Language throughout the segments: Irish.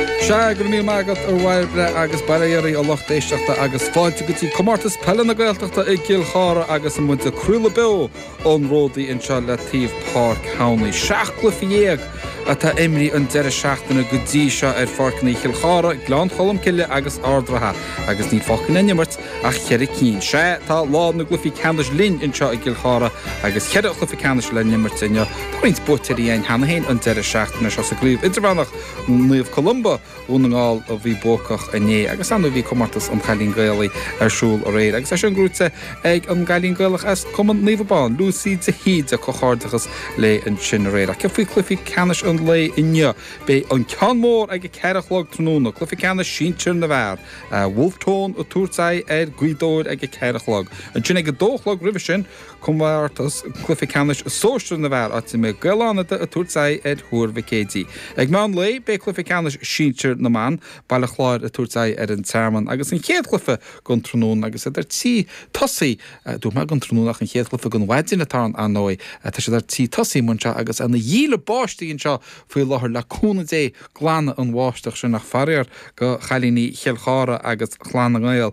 Sea, go raibh míle maith agat a Mháire Bríd agus bail ó Dhia ar an lucht éisteachta agus fáilte go dtí Comórtas Peile na Gaeltachta i gCill Chartha agus tá muid ag craoladh beo ón ródaí anseo le taobh Páirc Thamhnaigh. Seacht gcluiche dhéag atá imrithe an deireadh seachtaine go dtí seo ar pháirceanna Chill Chartha, Gleann Cholm Cille agus Ard an Rátha agus níl fágtha le n-imirt ach cheithre cinn. Sea, tá lá na gcluichí ceannais linn anseo i gCill Chartha agus cheithre chluiche ceannais le n-imirt inniu. Tá roinnt buaiteoirí ann cheana féin an deireadh seachtaine seo sa gCraobh Idirmheánach, Naomh Columba Dhún na nGall a bhí buacach inné agus ar ndóigh bhí comórtas an Chailín Gaelaigh ar siúl aréir agus é sin gnóite ag an gcailín Gaelach as Cumann Naomh Abán, Lucy de hÍde, comhghairdeachas léi as sin aréir. Ach faoi chluichí ceannais an lae inniu, beidh an ceann mór ag a ceathair a chlog tráthnóna, cluiche ceannais sinsear na bhfear. Wolfe Tone ag tabhairt aghaidh ar Ghaoth Dobhair ag a ceathair a chlog. Ansin ag a dó a chlog roimhe sin, Comórtas Cluife Ceannais Sóisear na bhFear, áit a mbeidh Gaeil Fhánada ag tabhairt aghaidh ar Thuar Mhic Éadaigh. Ag meán lae beidh Cluife Ceannais Sinsear na mBan, Baile Chláir ag tabhairt aghaidh ar An Tearmann agus an chéad chluife den tráthnóna agus iad ar tí tosaí, dúirt mé den tráthnóna ach an chéad chluife den mhaidin atá ann ar ndóigh, tá siad ar tí tosaí anseo agus ina dhíle báistí anseo faoi láthair le cúnamh Dé, glanfaidh an bháisteach sin ach faraor go chailíní Chill Chartha agus Chlann na nGael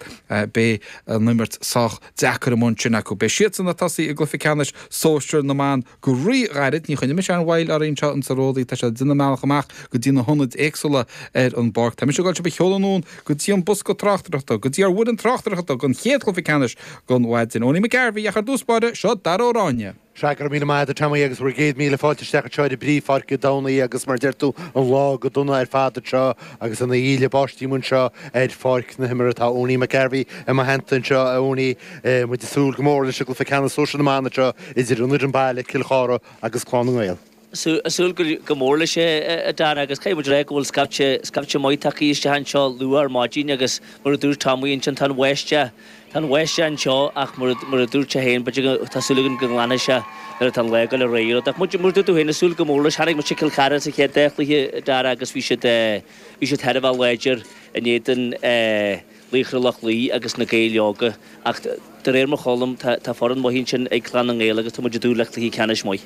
beidh an imirt sách deacair amuigh ansin acu. Beidh siadsan ag tosaí i gcluife ceannais sóisear na mban go rí-ghairid. Ní choinneoidh mise aon mhoill oraibh anseo insa Ródaí. Tá siad ag déanamh a mbealach amach go dtí na hionaid éagsúla ar an bpáirc. Tá mise ag dul sibh a sheoladh anonn go dtí an bosca tráchtaireachta, go dtí ár bhfoireann tráchtaireachta don chéad chluife ceannais don mhaidin. Owenie McGarvey ach ar dtús báire, seo Dara Ó Ráinne. Sea, go raibh míle maith agat, Tommy, agus bhur gcéad míle fáilte isteach anseo ar an bpríomhpháirc i dTamhnaigh agus, mar a deir tú, an lá go dona ar fad anseo agus ina dhíle báistí anseo ar pháirc na himeartha. Tá Owenie McGarvey i mo theannta anseo, a Owenie. Muid ag súil go mór leis an gcluiche ceannais sóisear na mban anseo idir an fhoireann baile, Cill Chartha, agus Clann na nGael. súil go mór leis, a Dara, agus caithfidh muid a rá go bhfuil scaifte, scaifte maith tagtha isteach anseo luath ar maidin agus mar a dúirt Tommy, ansin tá an bháisteach, tá an bháisteach anseo ach mar a, mar a dúirt sé féin, b'fhéidir go, tá súil againn go nglanfaidh sé nuair atá an lá ag dul ar aghaidh. Ach mar a dúirt tú féin, ag súil go mór leis, chonaic muid Cill Chartha sa chéad dá chluiche, a Dara, agus bhí siad, bhí siad thar a bheith láidir in éadan, eh, Laochra Loch Lao agus na Gaeil Óga, ach de réir mar a chluinim tá foireann mhaith ansin ag Clann na nGael agus tá muid ag dúil le cluiche ceannais maith.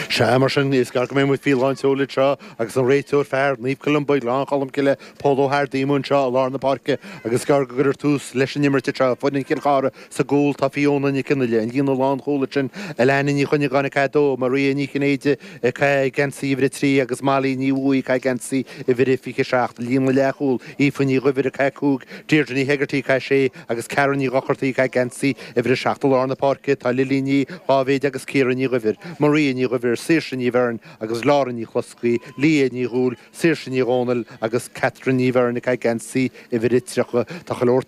Sea, mar sin, is gearr go mbeidh muid faoi lánseol anseo agus an réiteoir fear Naomh Columba, Gleann Cholm Cille, Pól Ó hArdaí amuigh anseo i lár na páirce agus is gearr go gcuirfear tús leis an imirt anseo foireann Chill Chartha. Sa gcúl tá Fiona Nic Fhionnaile, an líne lánchúil ansin, Alanna Ní Chuinneagáin ag caitheamh 2, Maria Ní Chinnéide ag caitheamh geansaí uimhir 3, agus Molly Ní Bhuaigh ag caitheamh geansaí uimhir a 27, an líne leathchúil, Aoife Ní Dhuibhir ag caitheamh a 5, Deirdre Ní Hegarty ag caitheamh a 6, agus Karen Ní Dhochartaigh ag caitheamh geansaí uimhir a 7. I lár na páirce tá Lily Ní Dháibhéid agus Ciara Ní Dhuibhir, Maria Ní Dhuibhir, Saoirse Ní Bheirn agus Laura Nic Bhloscaidh, Leah Ní Dhúill, Saoirse Ní Dhomhnaill agus Catherine Ní Bheirn ag caitheamh geansaí uimhir a 30. Tá chuile shórt